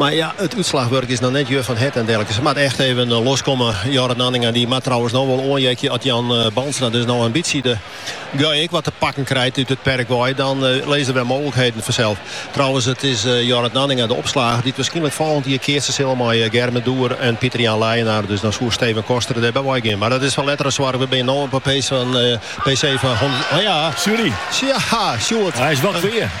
Mar ja, it útslachwurk is noch net je van het en derlike. Se moat echt even loskomme. Jorrit Nanninga die moat trouwens no wol oanheakje at Jan Bandstra dus no in bytsje de guy ek wat te pakken krijt út it perk wei. Dan lizze der wer mooglikheden fansels. Trouwens, it is Jorrit Nanninga de opslager dy't wierskynlik folgjend jier keatse sil mei Gerben de Boer en Pieter-Jan Leijenaar. Dus dan soe Steven Koster der by wei gean. Mar dat is foar letter in soarch. We binne no op PC fan hjoed. Sjoerd!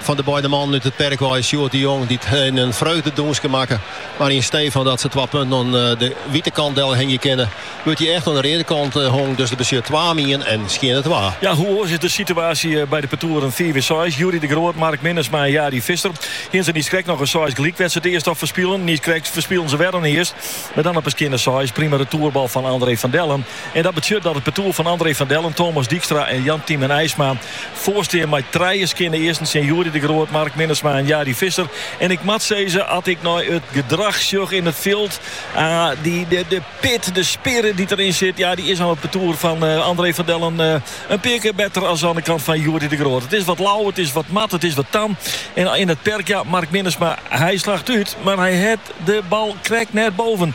Fan de beide mannen út it perk wei is Sjoerd de Jong dy hiene in freugdedûnske makke. Mar yn stee fan dat se twa punten oan de wite kant delhingje kinne, wurdt dy echt oan de reade kant hongen. Dus dat betsjut twa om ien en skjinne twa. Ja, hoe oars is de situaasje by de partoeren fiif en seis? Youri de Groot, Mark Minnesma en Jari Visser hiene se niiskrekt noch in seis gelyk wêr't se it earst op ferspilen. Niiskrekt ferspilen se wer in earst, mar dan op 'e skjinne seis. Prima retoerbal fan André van Dellen. En dat betsjut dat it partoer fan André van Dellen, Thomas Dijkstra en Jan Tymen Eisma foarstean mei trije skjinne earsten tsjin Youri de Groot, Mark Minnesma en Jari Visser. En ik moat sizze, as ik nei it gedrach sjoch yn it fjild, de pit, de spirit dy't deryn sit, ja, dy is oan it partoer fan André van Dellen in pear kear better as oan de kant fan Youri de Groot. It is wat lau, it is wat mat, it is wat tam. En yn it perk, ja, Mark Minnesma, hy slacht út, mar hy hat de bal krekt net boven.